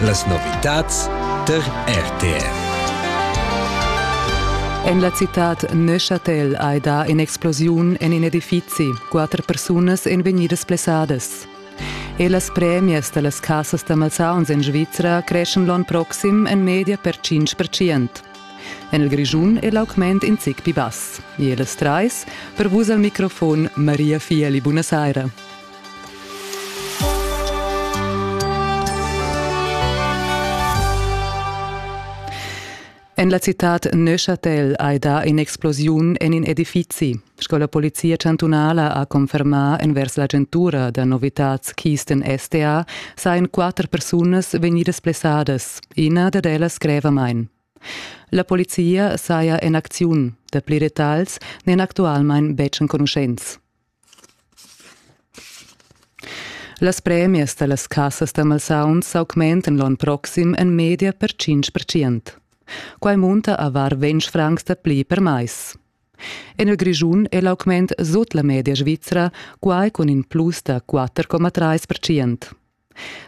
Las novitads tar RTR. En la citad Neuchâtel hai dà in'explosiun en in edifizi. Quatter persunas èn vegnidas blessadas. E las premias da las cassas da malsauns en Svizra creschan l'onn proxim en media per 5%. En il Grischun è l'augment in zic pli bass. E las trais, per vus al microfon Maria Fieli, buonasera. En la citad Neuchâtel hai dà in'explosiun en in edifizi. Sco la polizia chantunala ha confermà envers l'agentura da novitads Kisten STA, sajan quatter persunas vegnidas blessadas. Ina dad ellas grevamain. La polizia saja en acziun. Dapli detagls n'èn actualmain betg enconuschents. Las premias da las cassas da malsauns s'augmentan l'onn proxim en media per tschintg percent. Quai munta a var ventg francs da pli per mais. En il Grischun è l'augment sut la media svizra, quai cun in plus da 4,3 percent.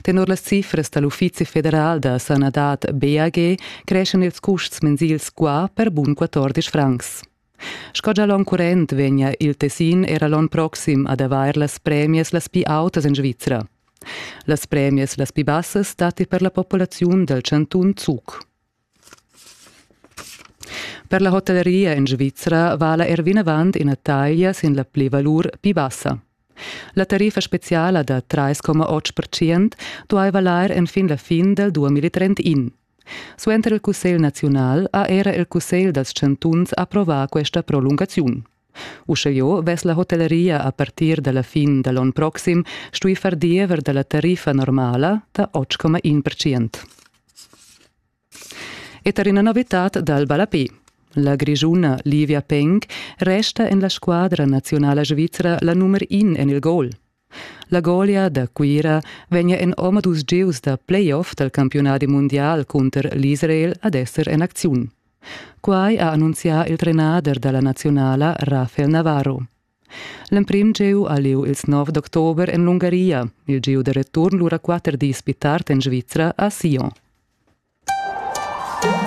Tenor las cifras da l'Uffizi federal da sanadad BAG creschan ils custs mensils qua per bun 14 francs. Sco gia l'onn current vegnia il Tessin era l'onn proxim ad avair las premias las pli autas en Svizra. Las premias las pli bassas datti per la populaziun dal chantun Zug. Per la hotelleria en Svizra vala er vinavant ina taglia sin la plivalur pli bassa. La tariffa speciala da 3,8% duai valair enfin la fin dal 2031. Suenter il Cussegl naziunal ha era il Cussegl dals chantuns approvà questa prolungaziun. Uschejau vess la hotelleria a partir dalla fin da l'onn proxim stui far diever dalla tariffa normala da 8,1%. E tar ina novitad dal ballape. La grischuna Livia Peng resta en la squadra nazionala svizra la nummer in en il gol. La golia da Cuira vegnia en omadus gieus da playoff dal campiunadi mundial cunter l'Israel ad esser en acziun. Quai ha annunzià il trenader da la nazionala Rafael Navarro. L'emprim gieu ha lieu ils 9 d'october en l'Ungaria, il gieu da return lura quatter dis pli tard en Svizra a Sion.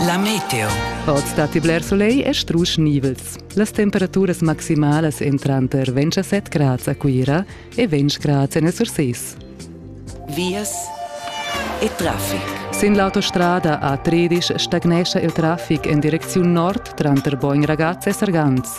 La meteo. Oz datti bler solegl e strusch nivels. Las temperaturas maximalas èn tranter 27 grads a Cuira e 20 grads en Surses. Vias e traffic. Sin l'autostrada a Tredisch stagnescha il traffic en direcziun nord tranter Bogn Ragaz e Sargans.